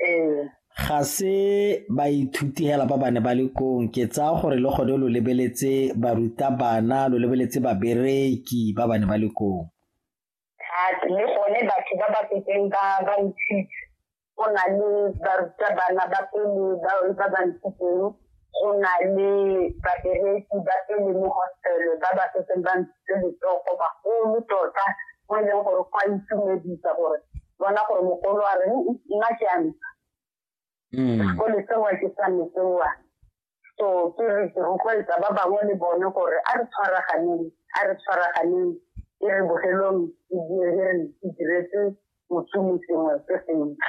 ee. ga se baithuti hela ba bane ba le kong ke tsaya gore le gone lo lebeletse barutabana lo lebeletse babereki ba bane ba le kong le gone batho ba ba setseng ba ba ntshitse go na le barutabana ba pele ba ba ntshitseng go na le babereki ba e leng mo hostele ba ba setseng ba ntse letsogo bagolo tota mo e leng gore go a itumedisa gore bona gore mogolo a reng nna ke a ntsha mm. sekole sewa ke sa mesewa so ke re ke rotloetsa ba bangwe le bone gore a re tshwaraganeng a re tshwaraganeng e re bogelong e diretse mosomi sengwe se sentle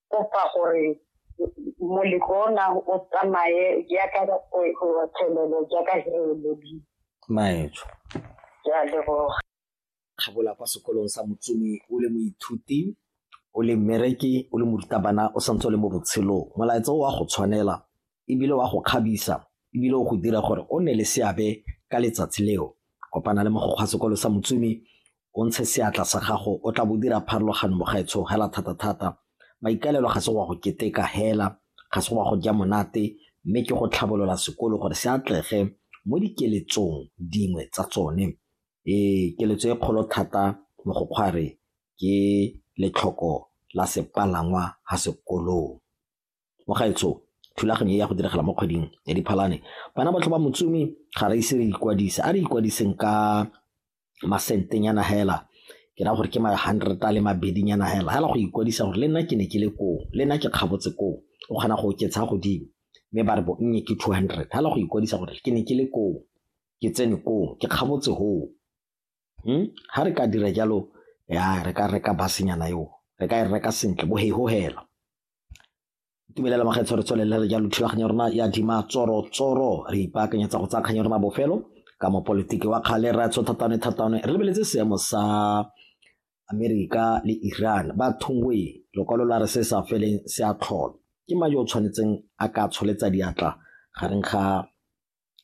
kopa gore moletlo ona o tsamaye jaaka thelelo jaaka he lobile maetsho ke a leboga kgabola kwa sekolong sa motsumi o le moithuti o le mmereki o le morutabana o santse o le mo botshelong molaetsa o wa go tshwanela ebile wa go kgabisa ebile o go dira gore o nne le seabe ka letsatsi leo kopana le mogokgwa sekolo sa motsumi o ntshe seatla sa gago o tla bo dira pharologano mogaetsho hela thata-thata maikaelelo ga se wa go keteka hela ga se wa go ja monate mme ke go tlhabolola sekolo gore se atlege mo dikeletsong dingwe tsa tsone ee keletso e kgolo thata mo go kgware ke letlhoko la sepalangwa ha sekolong Mo gaetsho, thulaganyo e ya go diragala mo kgweding ya Diphalane. Bana botlhe ba Motsumi ga re ise re ikwadise. A re ikwadiseng ka masentenyana hela, ke raya gore ke ma hundred a le mabedinyana hela, hela go ikwadisa gore le nna ke ne ke le koo, le nna ke kgabotse koo. O kgona go oketsa godimo, mme ba re bonnye ke two hundred. Hela go ikwadisa gore ke ne ke le koo, ke tsene koo, ke kgabotse hoo. Ga re ka dira jalo, ya re ka reka bus-nyana eo, re ka e reka sentle bo hela. tumelela makgetho re tswelele re jalo thulaganyo rona ya dima tsoro tsoro re ipaakanyetsa go tsaya kganyo rona bofelo ka mopolitiki wa kgale ra tsho thatane thatane re lebeletse seemo sa amerika le iran ba thungwe lokwalo la re se sa feleng se a tlhola ke mang yo o tshwanetseng a ka tsholetsa diatla gareng ga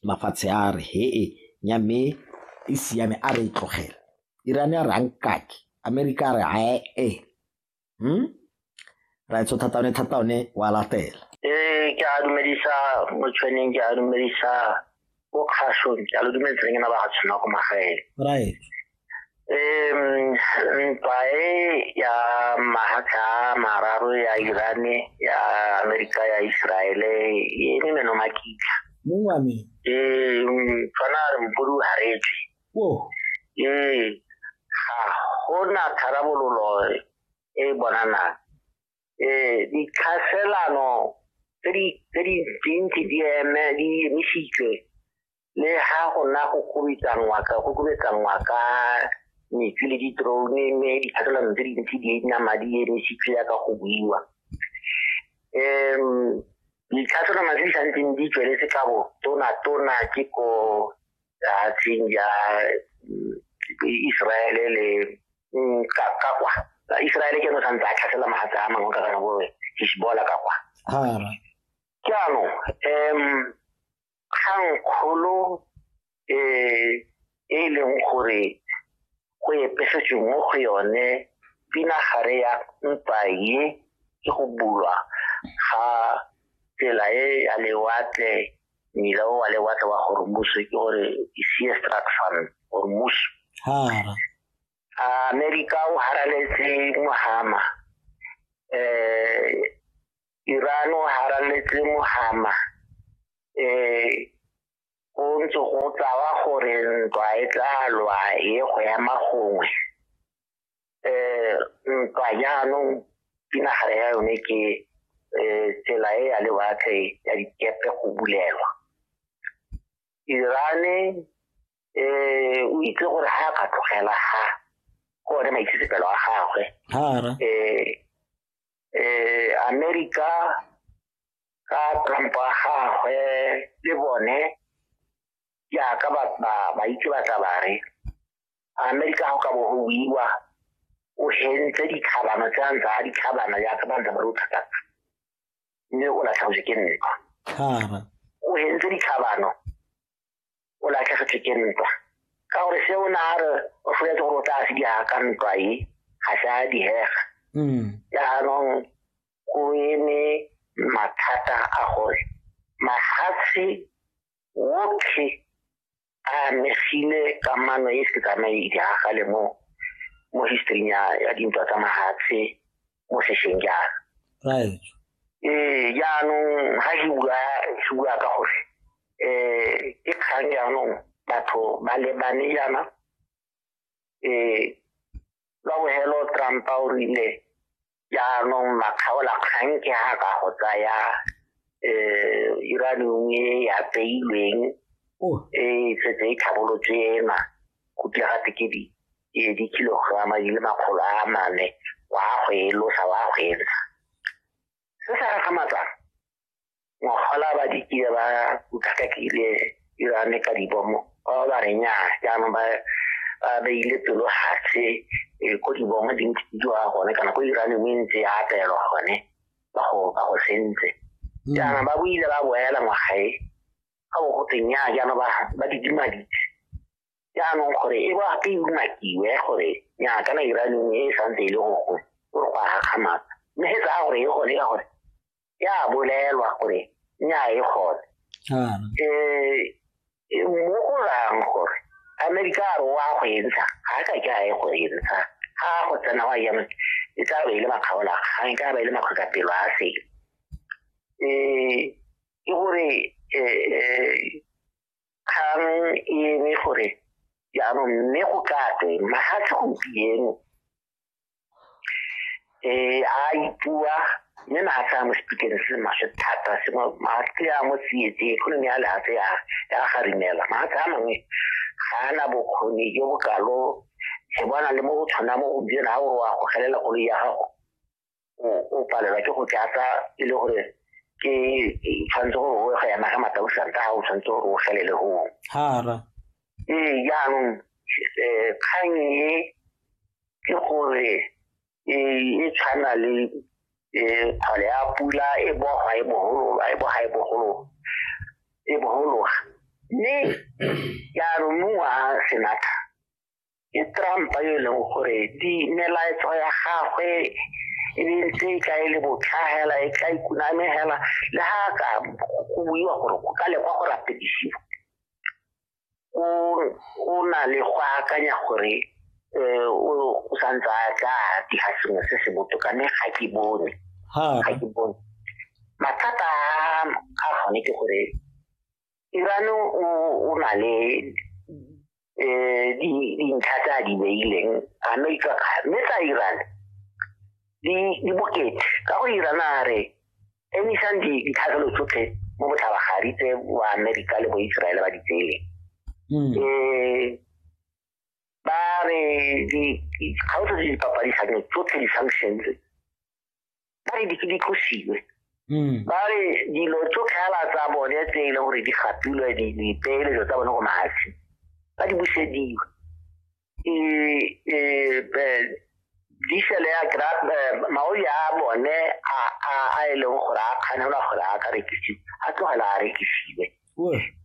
mafatshe a re hee nya mme e siame a re e tlogela iran a re a nkake amerika a re ae hmm? raetso thata one thata one wa latela ee ke a dumedisa motshweneng ke a dumedisa ko kgashong ke a lo dumedisa ke na ba ga tshwana ko magaeng right um ntwa e ya mahatla mararo ya irane ya amerika ya iseraele e ne meno makitla mongwame ee tshwana re mpodi o haretswe ee ga gona tharabololo e e bonanang um ditlhaselano tse di dintsi di eme di emisitswe le ga go na go kubetsanngwa ka go kubetsanngwa ka metsi le di-drone mme ditlhaselano tse dintsi di nna madi e emisitswe ya ka go buiwa um ditlhaselano tse di santseng di tsweletse ka bo tona tona ke ko lefatsheng ya mm, Israele le mm, ka ka kwa Israele ke yone santse a tlhasela magatse a mangwe ka kana bo Hezbollah ka kwa jaanong um kgang kgolo um e leng gore go epesetsweng mo go yone pinagare ya mpa ye ke go bulwa ga tsela e ya lewatle mmila o wa lewatle wa hormus ke gore ke sea structure hormus amerika o haraletse mohama um iran o haraletse mohama um go ntse go tlawa gore ntwa e tla lwa e go ya magongwe um ntwa jaanong pinagare ya yone ke um tsela e ya lewatle ya dikepe go bulelwa irane um o itse gore ga a ka tlogela ga go one maitsisepelo a gagwe um amerika ka tlhompho ya gagwe le bone jaaka ba itse ba tla bare amerika ga o ka bo go buiwa o hentse ditlhabano tse a ntse a ditlhabana jaaka ba ntse ba re o tlhatatsa mme o latlhagotse ke nka o hentse ditlhabano o latlhegetswe ke ntwa ka gore se o ne a re o foletse gore o tla se di ka ntwa e ga se a dihega mm. jaanong go eme mathata a gore mafatshe wotlhe a amegile kamano e se tsamaedi agale mo mo historing ya dintwa tsa mafatshe mo sešweng jaana right ee jaanong ga ke bua ke bua ka gore um ke kgang jaanong batho ba lebane jaana um ka bogelo trumpa o rile jaanong makgaola kgang ke ga ka go tsaya um iranium e ya tseilweng e setse e tlhabolotswe ena go tla ga tekedi e le dikilograma di le makgolo a mane wa go e losa wa go e ntsha se sa gagamatsa ngwagola ba dikile ba utlwakakile irane ka dibomo ba ba ba renya jaanong ba ba beile pelo gatshe e, ko dibomo di ntse di jwa gone kana ko irane mo e ntse ya apelwa gone ba go ba go sentse hmm. jaana ba boile ba boela ngwagae ga bo goteng ya jaana ba ba didimadi jaanong gore e ba ke umakiwe gore nya kana iraneng e santse e le gore gore go a gakgamatsa mme se tsaya gore e gone ka gore ya bolelwa gore nya e gone um mo go rang gore amerika a re wa go e ntsha ga a ka ke a e go e ntsha ga go tsena wa yame e tla be e le makgaola ga e ka ba e le makgweka pelo a sele um ke gore um kgang e eme gore jaanong mme go ka twe mahatlhe gompieno um a ipua mme mahatlhe a mo sepikeng se maswe thata se mahatlhe a mo tsietse economy ya lehatlhe ya garimela mahatlhe a mangwe ga a na bokgoni jo bokalo se bona le mo go tshwana mo gompieno ga gore wa gogelela koloi ya gago o palelwa ke go tlatsa e le gore ke tshwanetse gore o ga yana ga matausanta ga o tshwanetse gore o felele go hara ee jaanong eh, kgang e ke gore e, e tshwana le eh, kgole ya pula e boga e bogologa e boga e bogologa e bogologa mme jaanong mongwe a senatha ke trump yo e leng gore di melaetso ya gagwe e ne ntse e tla e le botlhagela e tla ikunamegela le ga ka go buiwa gore go ka lekwa go rapedisiwa o na le go akanya gore um o santse a tla dira sengwe se se botoka mme ga ke bone ga ke bone mathata a gone ke gore Iran o o na le eh di dintlha tsa di beileng America mme tsa Iran di di bokete ka go Iran a re emisang di ditlhagelo tsotlhe mo botlhabagadi tse wa America le bo Israel ba di tsele eh ba re di ga o tse di papadisang tsotlhe di-sanctions ba re di ke di tlosiwe hmm. ba re dilo tso tlhaela tsa bone tse e leng gore di gapilwe dipeeletso tsa bone go mafatshe ba di busediwe e, e, e, diesel ya grab maoli a bone a e leng gore a kganelwa gore a ka rekisiwe a tlogela a rekisiwe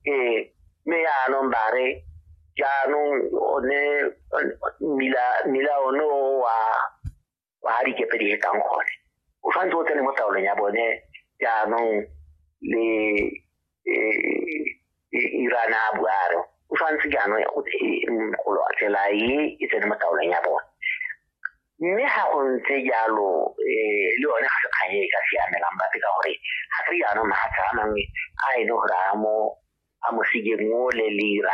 ee mme yaanong ba re jaanong one mmila one o wa kwa ga dikepe di hetang gone o tshwanetse o tsene mo taolong ya bone jaanong le e, e, irana a buare o tshwanetse jaanong go tsela e e tsene mo taolong ya bone mme ga go ntse jalo um le yone ga se kgang e ka siamelang bape ka gore ga se jaanong mafatshe a mangwe a e le gore a mo a mo sigeng o le lira